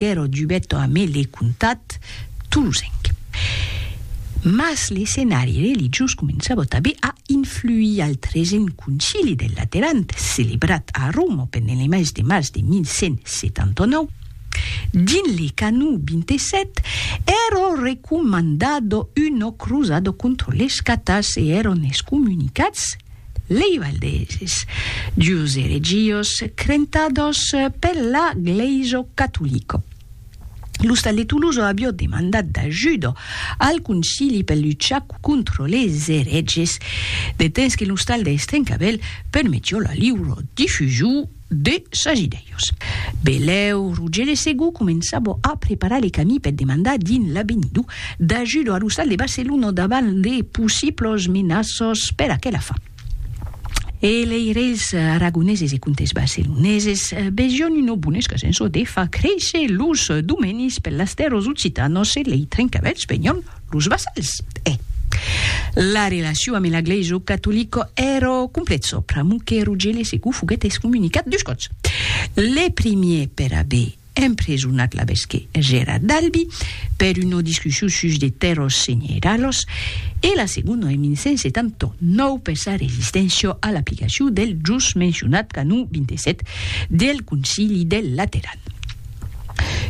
Piero Giubetto amé le comtat tolosenc. Mas l'escenari religiós començava tabé a influir al tresen Concili del Lateran, celebrat a Roma pendent le mes de març de 1179. Dins le canó 27, èra recomandada una crosada contra les catars e èran excomunicats Lei Valdeses, dus eregios crentados per la Glèiso Catolico. L'ostal de Tuluzo avió demandat d'ajudo al Concili per luchar contro les ereges, de temps que l'ostal de Estrencavèl permetió la liuro difusiu de sas idèios. Belèu, Rogere Segú començava a preparar le camí per demandar dins l'Avenido d'ajudo a l'ostal de Barcelona davant de possiblos menaços per aquela fin. E lei reis aragoneses e comtes barceloneses vesión una bona escasença de far créisser los domenis per las tèrras occitanos e lei trencavèlhs venión Los vassals, eh! La relacion amé la glèisa catolica èra complètza, pr'amor que Rogèle Segou foguèt excomunicat dus còps. Le primier per aver empresonat l'abesque Gerard d'Albi per una discussion sus de tèrras senheiralas e la segona en 1179 per sa resisténcia a l'aplicacion del jos mencionat canon 27 del Concili del Lateran.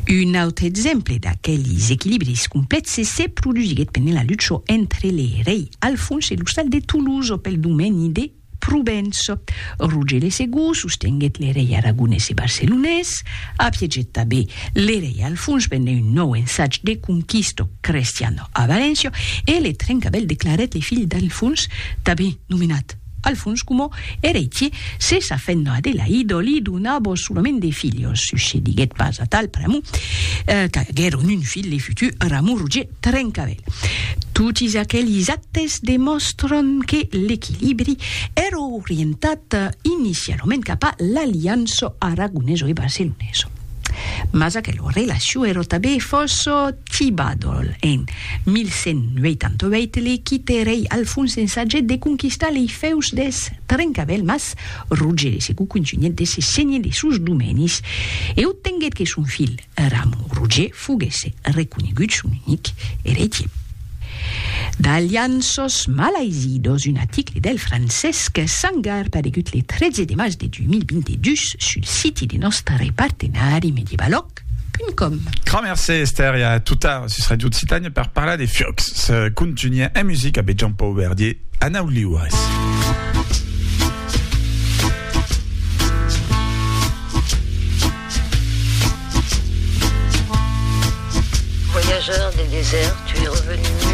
Un autre exemple d'aquelis equilibris complèxes se produsiguèt pendent la lucha entre le rei Alfons e l'ostal de Toulouse pel domeni de Provenç. Roger le Segur sostenguèt le rei aragonés e barcelonés, apiegèt tanben le rei Alfons pendent un nòu ensatge de conquista crestiana a Valéncia e le Trencavèl declarèt le filh d'Alfons tanben nomenat Al fons coma eretie, se sa fent Adelaido li dona vos solament de filhos, succediguèt pas atal pr'amor qu'aguèron un filh le futur Ramon Roger Trencavèl. Totis aquelis actes demòstran que l'equilibri èra orientat inicialament cap a l'aliança aragonesa e barcelonesa. Mas aquela relacion èra tanben fòrça Tibadol en 1188 li quite rei Alfons ensagèt de conquistar lei fèus deth Trencavèl mas Roger de Segou contunhèt de se senhir de sos domenis e obtenguèt que son filh Ramon Roger foguesse reconegut son unic eretier. D'Alianços malaizidos, un aticle del Francesc Sangar paregut le 13 de març de 2022 sul siti de nòstre partenari Medievalog. Www.radiofutura.com Gramercé Esther e a tota sus Radio Occitània per parlar de Fiocs. Se contunha en musica be Jean Paul Verdier, Anau Liures. Voyageur des déserts, tu es revenu